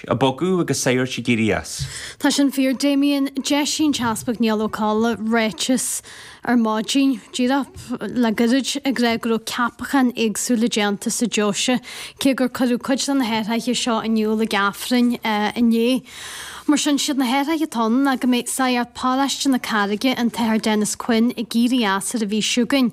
ag bogadh agus sagairt ag éirí as. Tá sin fíor Damien. D'eisigh an tEaspag Niall Coll ráiteas ar maidin díreach le gairid ag rá go raibh ceapacháin éagsúla déanta sa deoise, cé gur cuireadh cuid de na hathraithe seo in iúl ag Aifreann inné. Mar sin, siad na hathraithe atá ann ná go mbeidh Sagart Paróiste na Carraige, an tAthair Denis Quinn, ag éirí as ar an phinsean againn,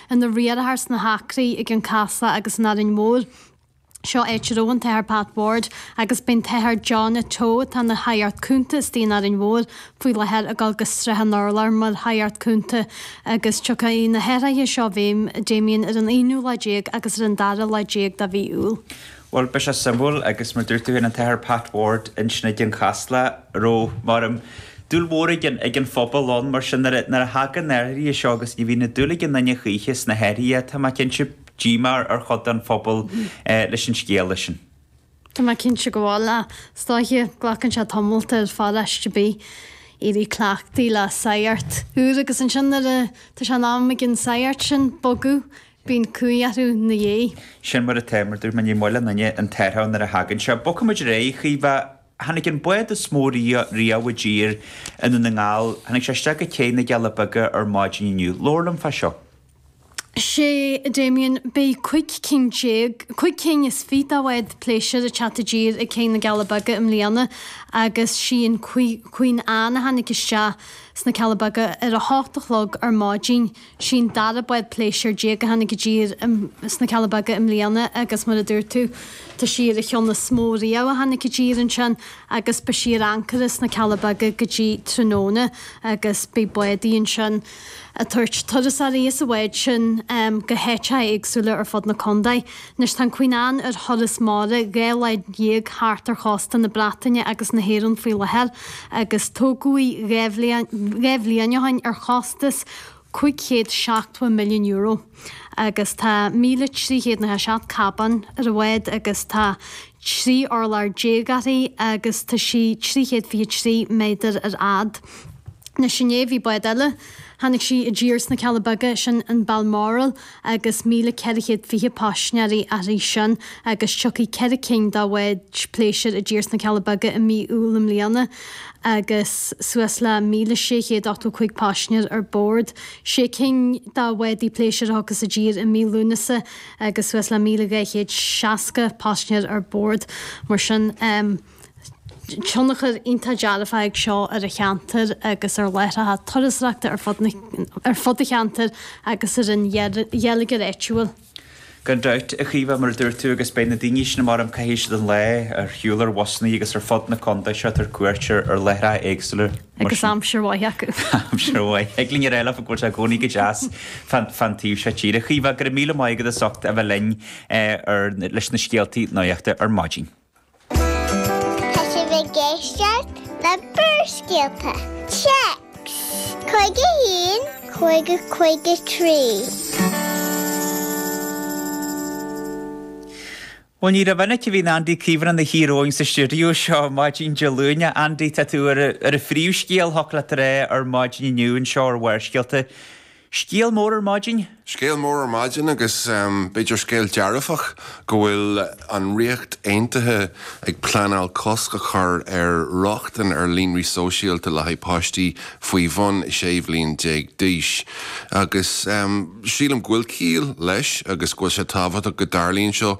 ina riarthar sna hAcraí i gCionn Casla agus in Árainn Mhór. Seo áit a raibh an tAthair Pat Ward agus beidh an tAthair Johnny Teo atá ina Shagart Cúnta istigh in Árainn Mhór faoi láthair ag dul go Srath an Urláir mar Shagart Cúnta agus tiocfaidh na hathraithe seo i bhfeidhm Damien ar an aonú lá déag agus ar an dara lá déag de mhí Iúil. Bhuel, beidh sé suimiúil agus mar dúirt tú féin an tAthair Pat Ward i gCionn Casla a raibh, measaim, dúil mhór ag an, ag an phobal ann mar sin nuair a, nuair a thagann na athruithe seo agus ní bhíonn dúil ag aon duine choíche sna hathruithe, tá mé cinnte, díomá ar, ar chuid den phobal leis an scéala sin. Tá mé cinnte go bhfuil, ach is dóiche, glacann sé tamalt ar pharóiste ar bith éirí cleachtaithe le sagart úr agus ansin nuair a, tá sé in am ag an sagart sin bogadh bíonn cumhaidh orthu 'na dhiaidh. Sin mar atá, mar dúirt mé, ní maith le aon duine an t-athrú nuair a thagann sé. Bogfaimid ar aghaidh, a Chaoimhe. Tháinig an bád is mó riamh, riamh i dtír i nDún na nGall, tháinig sé isteach go cé na gCealla Beaga ar maidin inniu. Labhair liom fá seo. Sea Damien, beidh cúig cinn déag, cúig cinn is fiche de bháid phléisiúir ag teacht i dtír ag cé na gCealla Beaga i mbliana agus sí an Queen Anne a tháinig isteach sna Cealla Beaga ar a hocht a chlog ar maidin. Sí'n dara bád pléisiúr déag a tháinig i dtír sna Cealla Beaga i mbliana agus mar a dúirt tú, tá sí ar an cheann is mó riamh a tháinig i dtír ansin agus beidh sí ar ancaire sna Cealla Beaga go dtí tráthnóna agus beidh busannaí ansin ag tabhairt turasóirí as an bhád sin go háiteacha éagsúla ar fud na condae. Anois tá an Queen Anne ar thuras mara dhá lá dhéag thart ar chósta na Breataine agus na hÉireann faoi láthair agus tógadh í dhá bhliain ó shin ar chostas 500 70 milliún euro agus tá 1,307 cabán ar an bhád agus tá 13 urlár uirthi agus tá sí 323 méadar ar fhad. Anois inné bhí bád eile, tháinig sí i dtír sna Cealla Beaga, sin an Balmoral, agus 1,420 paisinéirí uirthi sin agus tiocfaidh ceithre cinn de bháid phléisiúir i dtír sna Cealla Beaga i mí Iúil i mbliana agus suas le 1,685 paisinéir ar bord, sé cinn de bhádaí pléisiúir a thiocfas i dtír i mí Lúnasa agus suas le 1,260 paisinéir ar bord. Mar sin. tionchar iontach dearfach ag seo ar a cheantar agus ar láithreacha turasóireachta ar fud a cheantair agus ar an gheilleagar áitiúil. Gan dabht, a Chaoimhe, mar a dúirt tú, agus beidh na daoine sin, ar maidin caithfidh siad an lá ar shiúl ar bhusanna agus ar fud na contae seo ag tabhairt cuairt ar láithreacha éagsúla, mar Agus sin. aimsir mhaith acu. Aimsir mhaith. Thig linn a rá leo go bhfuil sé i gcónaí go deas fán taobh seo tíre. A Chaoimhe, go raibh míle maith agat as ucht a bheith linn leis na scéaltaí nuachta ar maidin. Tá sibh ag éisteacht le Barrscéalta, Téacs, cúig a haon, cúig a cúig a trí. Bhuel ní rómhinic a bhíonn Andy Caomhán ina shuí romhainn sa stiúideo seo maidin Dé Luain. A Andy, tá tú ar an phríomhscéal, shocrófá é ar maidin inniu anseo ar Bharrscéalta. Scéal mór ar maidin. Scéal mór ar maidin agus b'fhéidir scéal dearfach go bhfuil an Ríocht Aontaithe ag pleanáil cosc a chur ar rochtain ar líonraí sóisialta le haghaidh páistí faoi bhun 16 bhliain d'aois agus sílim go bhfuil ciall leis agus go bhfuil sé tábhachtach go dtarlaíonn seo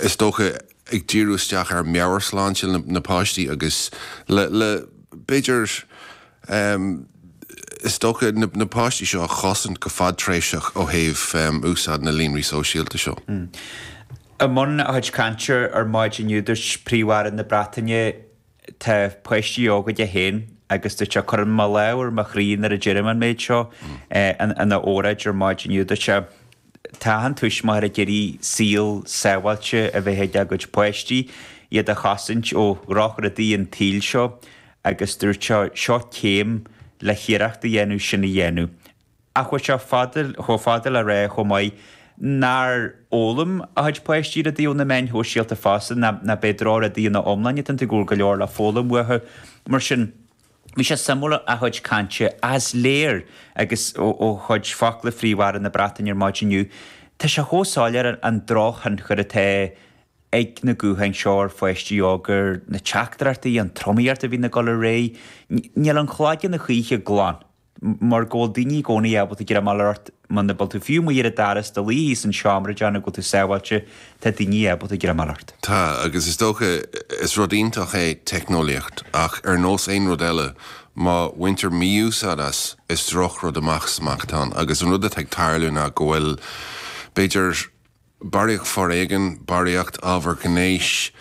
is dócha ag díriú isteach ar mheabhairshláinte na bpáistí agus le b'fhéidir Ehm, is dócha, na, na páistí seo a chosaint go fadtréimhseach ó thaobh, ehm, úsáid na líonraí sóisialta seo. I mbun a chuid cainte ar maidin inniu, dúirt Príomh-Aire na Breataine, Tá páistí óga dó féin agus, dúirt sé, cuirim mo lámh ar mo chroí nuair a deirim an méid seo, eh, in, ina óráid ar maidin inniu, dúirt sé, Tá achan tuismitheoir ag iarraidh saol sábháilte a bheith ag a gcuid páistí, iad a chosaint ó dhrochrudaí an tsaoil seo agus dúirt Seo céim le hiarracht a dhéanamh sin a dhéanamh. Ach chuaigh sé chomh fada le rá chomh maith gur fhoghlaim a chuid páistí rudaí ó na meáin shóisialta fosta nach bhfuil siad ina ndrochrudaí ina n-iomláine, go bhfuil go leor le foghlaim uathu. Mar sin, bhí sé suimiúil a chuid cainte is léir agus ó chuid focla Phríomh-Aire na Breataine ar maidin inniu, tá sé chomh soiléir an drochthionchar atá ag na gutháin seo ar pháistí óga ar na teachtaireachtaí, an tromaíocht a bhíonn ag dul ar aghaidh. Níl an chloigeann a choíche glan mar go bhfuil daoine i gcónaí ábalta greim a fháil ort muna bhfuil tú fiú amuigh ar an doras, i do luí sa seomra ag déanamh go bhfuil tú sábháilte, tá daoine ábalta greim a fháil ort. Tá, agus is dócha, is rud iontach é teicneolaíocht ach ar nós aon rud eile, má bhaintear mí-úsáid as, is drochrud amach 's amach atá ann agus an rud atá ag tarlú ná go bhfuil b'fhéidir, barraíocht foréigin, barraíocht ábhar gnéis,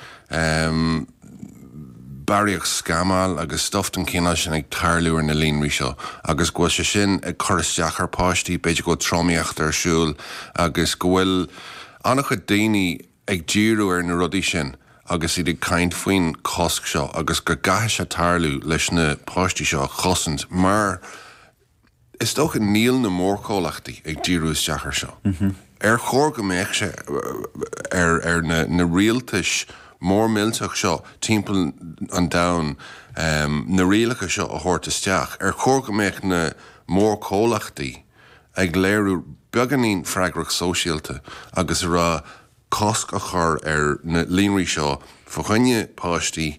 barraíocht scamáil agus stuif den chineál sin ag tarlú ar na líonraí seo agus go bhfuil sé sin ag cur isteach ar pháistí, b'fhéidir go bhfuil tromaíocht ar siúl agus go bhfuil an-chuid daoine ag díriú ar na rudaí sin agus iad ag caint faoin chosc seo agus go gcaithfidh sé tarlú leis na páistí seo a chosaint mar Is dócha, níl na mórchomhlachtaí ag díriú isteach ar seo. Ar chóir go mbeadh sé ar na rialtais mhóra mhillteacha seo timpeall an domhain na rialacha seo a thabhairt isteach? Ar chóir go mbeadh na mórchomhlachtaí ag léiriú beagáinín freagracht sóisialta agus a rá cosc a chur ar na líonraí seo fá choinne páistí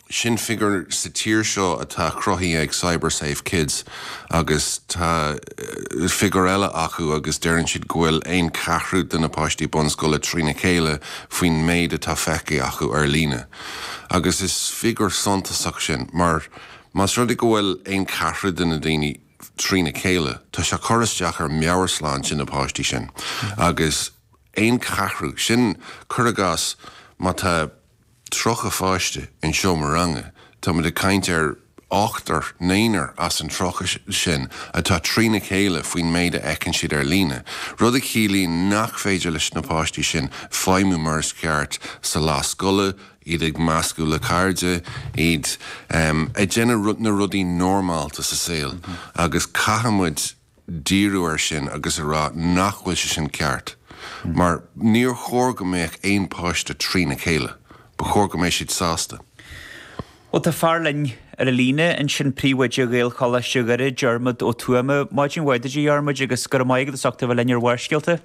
Sin figiúr sa tír seo atá cruthaithe ag CyberSafe Kids agus tá figiúr eile acu agus deireann siad go bhfuil aon cheathrú de na páistí bunscoile trína chéile faoin méid atá feicthe acu ar líne. Agus is figiúr suntasach é sin mar más rud é go bhfuil aon cheathrú de na daoine trína chéile tá sé ag cur isteach ar mheabhairshláinte na páistí sin agus aon cheathrú, sin cur i gcás má tá. 30 pháiste in seomra ranga, táimid ag caint ar ochtar nó naonúr as an 30 sin atá trína chéile faoin méid a fheiceann siad ar líne, rud a chiallaíonn nach féidir leis na páistí sin feidhmiú mar is ceart sa lá scoile, iad ag meascadh le cairde, iad ag déanamh na rudaí normálta sa saol agus caithfidh muid díriú air sin agus a rá nach bhfuil sé sin ceart mar níor chóir go mbeadh aon páiste trína chéile. Ba chóir go mbeidh siad sásta. Bhuel, tá fear linn ar an líne ansin, Príomhoide Ghaelcholáiste Dhoire, Diarmaid Ó Tuama. Maidin mhaith duit, a Dhiarmaid, agus go raibh maith agat as ucht a bheith linn ar Bharrscéalta.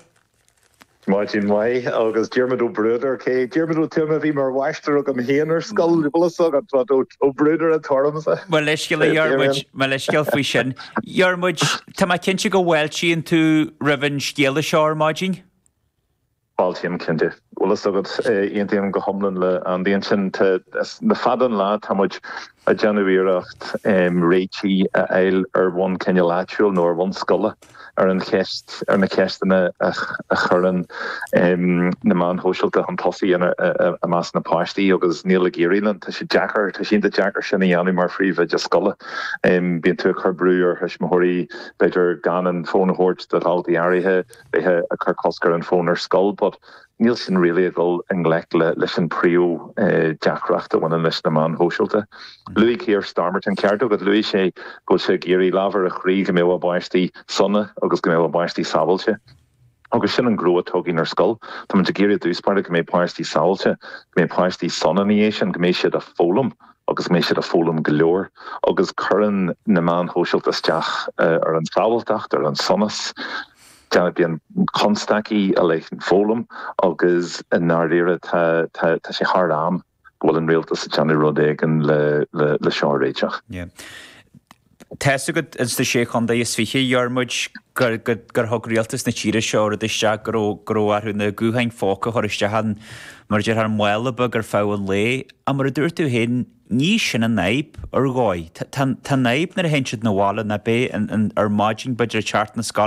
Maidin mhaith agus Diarmaid Ó Bruadair, cé, Diarmaid Ó Tuama a bhí mar mháistir agam féin ar scoil, go bhfuil 's agat, but Ó Bruadair atá ormsa. Mo leithscéal, a Dhiarmuid, mo leithscéal faoi sin. Dhiarmuid, tá mé cinnte go bhfáiltíonn tú roimh an scéala seo ar maidin? Fáiltím, cinnte. Go bhfuil 'fhios agat, aontaím go hiomlán le Andy ansin. Tá, le fada an lá tá muid ag déanamh iarracht réiteach a fháil ar bhonn cineál áitiúil nó ar bhonn scoile. ar an cheist, ar na ceisteanna a chuireann na meáin shóisialta chun tosaigh i measc na bpáistí agus níl ag éirí linn. Tá sé deacair, tá sé iontach deacair sin a dhéanamh mar phríomhoide scoile. Bíonn tú ag cur brú ar thuismitheoirí b'fhéidir gan an fón a thabhairt do dhaltaí áirithe, bheith ag cur cosc ar an fón ar scoil but, Níl sin really ag dul i ngleic leis an phríomhdheacracht a bhaineann leis na meáin shóisialta. Luaigh Keir Starmer, tá an ceart agat, luaigh sé go bhfuil sé ag iarraidh lámh ar a chroí go mbeadh páistí sona agus go mbeadh páistí sábháilte. Agus sin an gnó atá againn ar scoil. Táimid ag iarraidh i dtús báire go mbeidh páistí sábháilte, go mbeidh páistí sona ina dhiaidh sin, go mbeidh siad a' foghlaim agus go mbeidh siad a' foghlaim go leor. Agus cuireann na meáin shóisialta isteach ar an tsábháilteacht, ar an sonas. Bíonn constaicí i leith na foghlama agus i ndáiríre tá sé thar am go bhfuil an rialtas ag déanamh rud éigin le seo a réiteach. Tá's agat in sna Sé Chontae is Fiche, a Dhiarmuid, gur thug rialtas na tíre seo rud isteach go raibh orthu na gutháin phóca a chur isteach in, mar a déarfá, mála beag ar feadh an lae ach mar a dúirt tú féin ní hé sin an fhadhb ar dhóigh. Tá an fhadhb nuair a théann siad 'na bhaile nó b'fhéidir ar maidin b'fhéidir ag teacht na scoile